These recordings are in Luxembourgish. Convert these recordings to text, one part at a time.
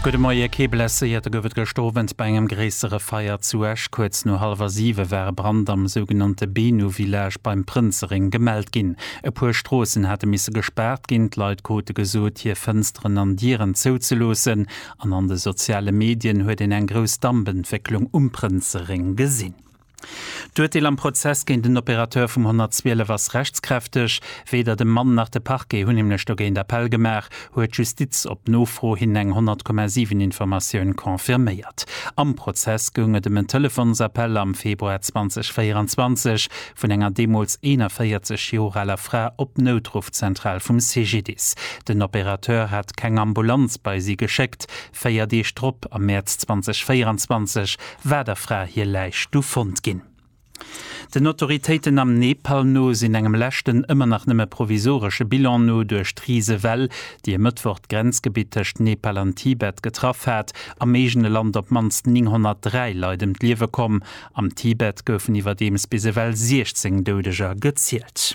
Gudde Moie, kee Blesséierte gouf et gëscht Owend bei engem gréissere Feier zu Esch. Kuerz no hallwer siwe war e Brand am sougenannte Benu Village beim Prënzereng gemellt ginn. E puer Stroossen hate misse gespaart ginn, d'Leit krute gesot, hir Fënsteren an Dieren zouzeloossen an an de soziale Medien huet een eng grouss Dampentwécklung um Prënzereng gesinn. D'Urteel am Prozess géint den Opérateur vum 112 ass rechtskräfteg. Weder de Mann nach de Parquet hunn nämlech dogéint Appell gemaach, huet d'Justiz op Nofro hin eng 100,7 Informatioun confirméiert. Am Prozess goung et ëm en Telefonsappell am Februar 2024 vun enger deemools 41 Joer aler Fra op d'Noutruffzentral vum CGDIS. Den Opérateur hat keng Ambulanz bei si geschéckt, Véier Deeg drop, am Mäerz 2024, war der Fra hir Läich du fonnt ginn. Den Autoritéiten am Nepal no sinn engem leschten, ëmmer nach nëmme provisoresche Bilan no, duerch d'Risewell, déi e Mëttwoch d'Grenzgebitt tëscht Nepal an Tibet getraff hat, am eegene Land op d'mannst 903 Leit ëm d'Liewe komm. Am Tibet goufen iwwerdeems bis ewell 16 Doudeger gezielt.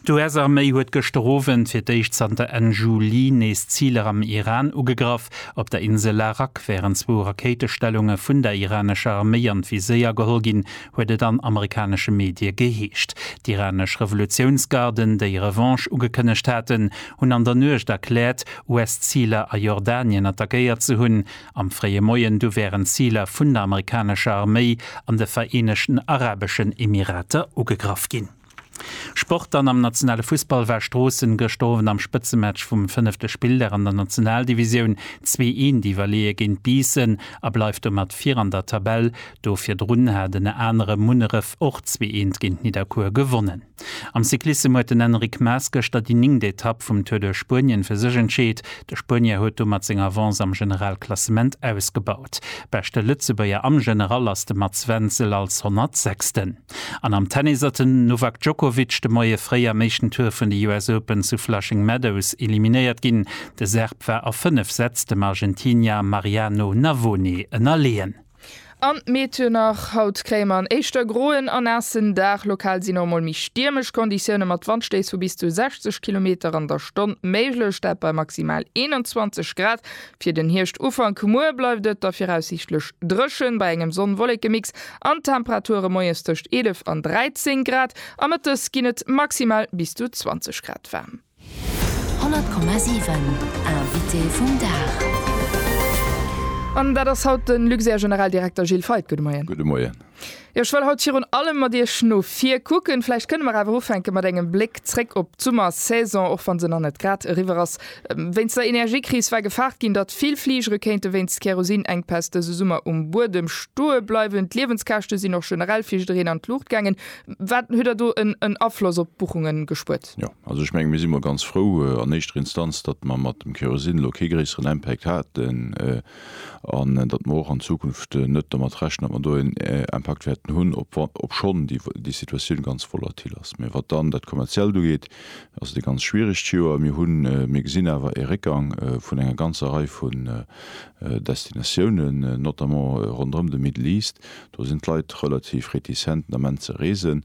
D'US-Arméi huet gëschter Owend fir d'éischt zanter Enn Juli nees Ziler am Iran ugegraff. Op der Insel Arak wären zwou Rakéitestellunge vun der iranescher Arméi an d'Viséier geholl ginn, huet et an amerikanesche Medie geheescht. D'iranesch Revolutiounsgarden, déi Revanche ugekënnegt haten, hunn an der Nuecht erkläert, US-Ziler a Jordanien attackéiert ze hunn. Am fréie Moien du wären Ziler vun der amerikanescher Arméi an de Vereenegten Arabeschen Emirater ugegraff ginn. Sport Dann am nationale Fussball war Stroossen gëschter Owend am Spëtzematch vum fënnefte Spilldag an der Nationaldivisioun zwee eent iwwerleeë géint Biissen a bleift domat vir an der Tabell. Do virdrun hat ënner anerem Munneref och zwee eent géint Nidderkuer gewonnen. Am Cyclissem huet den Enric Maes gëschter déi néngt Etapp vum Tour duerch Spuenien fir sech entscheet. De Spuenier huet domat seng Avance am Generalklassement ausgebaut. Beschte Lëtzebuerger am General ass de Mats Wenzel als 106. An am Tennis hat den Novak Djokovic de Moie fréi am éischten Tour vun de US Open zu Flushing Meadows eliminéiert ginn. De Serb war a 5 Sätz dem Argentinier Mariano Navone ënnerleeën. An d'Meteo nach, Haut kréie mer en éischter groen a naassen Dag. Lokal sinn och mol méi stiermesch Konditioune mat Wandstéiss vu bis zu 60 Kilometer an der Stonn méiglech, dat bei maximal 21 Grad. Fir den Hierscht-Ufank muer bleift et da viraussiichtlech dréchen, bei engem Sonn-Wollekemix An d'Temperature moies tëscht 11 an 13 Grad a mëttes ginn et maximal bis zu 20 Grad waarm. 100,7 Invité vum Dag. An dat ass haut de Luxair-Generaldirekter Gilles Feith. Gudde Moien. Gudde Moien. Jo, ech wëll haut virun allem mat Iech no vir kucken. Vläicht kënne mer awer ufänke mat engem Bléck zréck op d'Summersaison, och wa se nach net grad eriwwer ass. Wéinst der Energiekris war gefaart ginn, datt vill Fligere kéinte wéinst Kerosinengpäss dëse Summer um Buedem stoe bleiwen. D'Liewenskäschte sinn och generell fir jiddereen an d'Luucht gaangen. Wat huet der do en Afloss op d'Buchunge gespuert? Jo, also ech menge mir si mol ganz frou an éischter Instanz, datt mer mat dem Kerosin elo kee gréisseren Impact haten an datt mer och an Zukunft net domat rechnen, datt mer do en Impakt wäerten hunn, obschonn déi Situatioun ganz volatil ass. Mee wat dann dat Kommerziellt ugeet, ass et e ganz schwieregt Joer. Mir hunn, mir gesinn awer e Réckgang vun enger ganzer Rei vun Destinatiounen, notamment ronderëm de Middle East. Do sinn d'Leit relativ réticent den Ament ze reesen.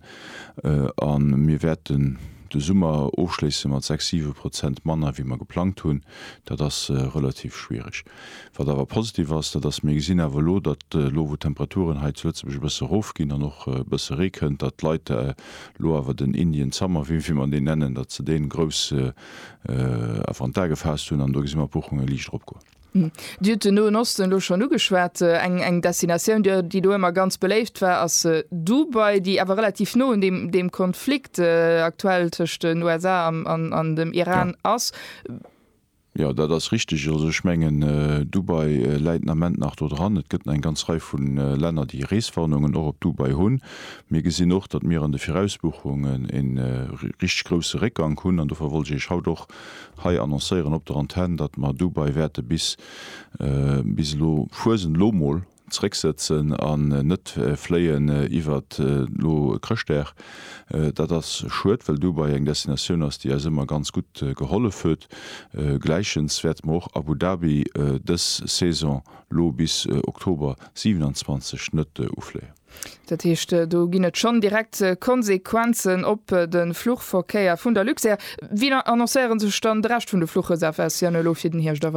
A mir wäerten de Summer ofschléisse mat sechs, siwe Prozent manner wéi mer geplangt hunn. Dat ass relativ schwiereg. Wat awer positiv ass, dat ass, mir gesinn awer elo, datt elo wou d'Temperaturen hei zu Lëtzebuerg e bësse erofginn an och e bësse Ree kënnt, datt d'Leit elo awer den Indian Summer, wéi wéi mer deen nennen, datt se dee grouss awer an d'A gefaasst hunn an do gesi mer d'Buchunge liicht eropgoen. Dir hutt den Noen Osten elo schonn ugeschwat. Eng eng Destinatioun, déi do ëmmer ganz beléift war, ass Dubai, déi awer relativ no un deem deem Konflikt aktuell tëscht den USA an an dem Iran ass. Jo, dat ass richteg. Also ech mengen, Dubai läit den Ament nach do dran. Et gëtt nach eng ganz Rei vu Länner, déi Reeswarnungen och op Dubai hunn. Mir gesinn och, datt mir an de Virausbuchungen e richteg grousse Réckgank hunn. An dofir wollt ech Iech haut och hei annoncéieren op der Antenn, datt mer Dubai wäerte bis, bis elo, Fuesent elo mol, Zrécksëtzen an net fléien iwwer elo Chrëschtdag. Dat ass schued, well Dubai eng Destinatioun ass, déi eis ëmmer ganz gutt gehollef huet. Gläichens wäerte mer och Abu Dhabi dës Saison elo bis Oktober 27 net ufléien. Dat heescht, do ginn et schonn direkt Konsequenzen op de Fluchverkéier vun der Luxair. Wéi annoncéiere sech dann de Rescht vun de Fluchreservatiounen elo fir den Hierscht?